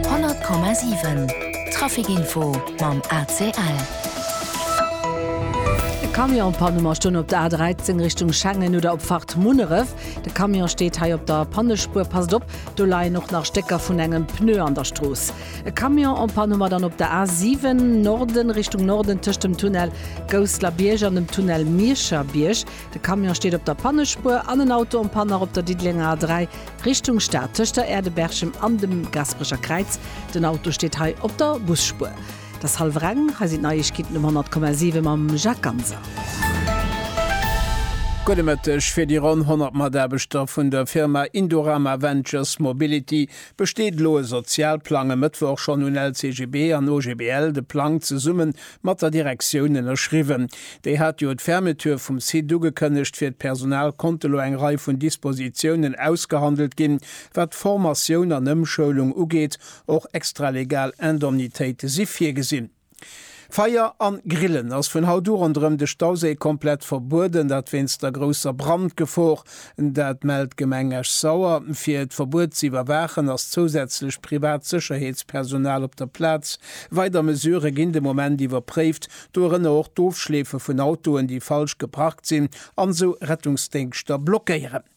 100,7 Trafic Info mam ACL. E Camion an Panne Ma stoen op der A13 Richtung Schengen oder op Fahrt Munneref. De Camion steet hei op der Pannespuer. Passt op, do leien och nach Stécker vun engem Pneu an der Strooss. E Camion en Panne Ma dann op der A7 Norden Richtung Norden tëscht dem Tunnel Gousslerbierg an dem Tunnel Miescherbierg. De Camion steet op der Pannespuer an en Auto en Panne nach op der Diddelenger A3 Richtung Stad, tëscht der Aerdeberchem an dem Gasperecher Kräiz. Den Auto steet hei op der Busspuer. Et ass hallwer eng. Hei sinn d'Neiegkeeten um 100,7 mam Jacques Ganser. Gudde Mëtteg. Fir déi ronn 100 Mataarbechter vun der Firma Indorama Ventures Mobility besteet elo e Sozialplang. E Mëttwoch schonn hunn LCGB an OGBL de Plang zesumme Mat der Direktioun ënnerschriwwen. Déi hat jo d'Fermeture vum Site ugekënnegt. Fir d'Personal konnte lo eng Rei vun Dispositiounen ausgehandelt ginn, wat d'Formatioun an Ëmschoulung ugeet. Och extralegal Indemnitéite si virgesinn. Feier an Grillen ass vun haut u ronderëm de Stauséi komplett verbueden, dat wéinst der grousser Brandgefor. Dat mellt d'Gemeng Esch-Sauer. Fir d'Verbuet ze iwwerwaachen, ass zousätzlech privat Sécherheetspersonal op der Plaz. Weider Mesurë ginn de Moment iwwerpréift, dorënner och d'Ofschleefe vun Autoen, déi falsch geparkt sinn an esou Rettungsdéngschter blockéieren.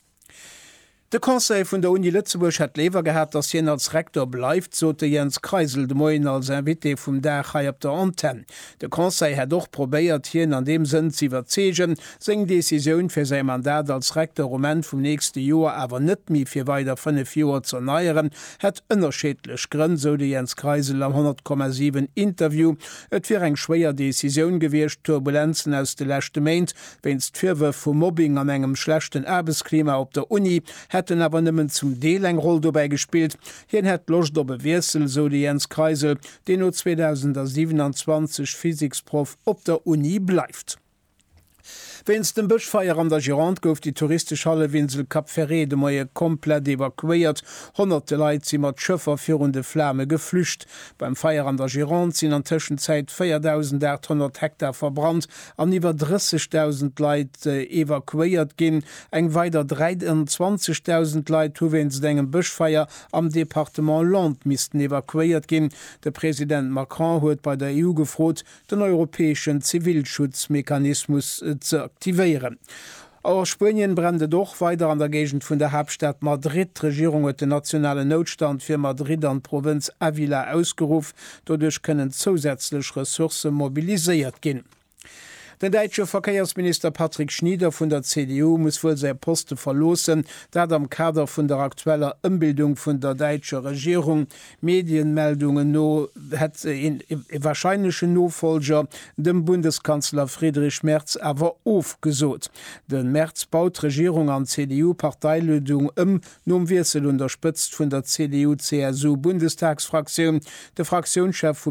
De Conseil vun der Uni Lëtzebuerg hätt léiwer gehat, datt hien als Rektor bleift, sot de Jens Kreisel de Moien als Invité vum Dag hei op der Antenn. De Conseil hätt och probéiert, hien an deem Sënn z'iwwerzeegen, seng Decisioun, fir säi Mandat als Recteur um Enn vum nächste Joer awer net méi fir weider fënnef Joer z'erneieren, hätt ënnerscheedlech Grënn, sou de Jens Kreisel am 100,7 Interview. Et wier eng schwéier Decisioun gewiescht, d'Turbulenzen aus de leschte Méint, wéinst Virwërf vu Mobbing an engem schlechten Aarbechtsklima op der Uni, hätten awer nëmmen zum Deel eng Roll dobäi gespillt. Hien hätt Loscht op e Wiessel, sou de Jens Kreisel, deen no 2027 Physiksproff op der Uni bleift. Wéinst dem Bëschfeier an der Gironde gouf déi touristesch Hallefinsel Cap Ferret de Moie komplett evakuéiert. Honnerte Leit si mat Schëffer virun de Flame geflücht. Beim Feier an der Gironde sinn an Tëschenzäit 4.800 Hektar verbrannt an iwwer 30.000 Leit evakuéiert ginn. Eng weider 23.000 Leit hu wéinst engem Bëschfeier am Departement Landes missten evakuéiert ginn. De President Macron huet bei der EU gefrot, den europäeschen Zivilschutzmechanismus ze aktivéieren. A Spuenien brennt et och weider an der Géigend vun der Haaptstad Madrid. D'Regierung huet den nationalen Noutstand fir Madrid an d'Provënz Ávila ausgeruff. Doduerch kënnen zousätzlech Ressourcë mobiliséiert ginn. Den däitsche Verkéiersminister Patrick Schnieder vun der CDU muss wuel säi Poste verloossen, dat am Kader vun der aktueller Ëmbildung vun der däitscher Regierung. Mediemeldungen no hätt een ee warscheinlechen Nofollger dem Bundeskanzler Friedrich Merz awer ofgesot. De Merz baut d'Regierung an d'CDU-Parteiledung ëm. Nom Wiessel un der Spëtzt vun der CDU-CSU-Bundestagsfraktioun, de Fraktiounschef vu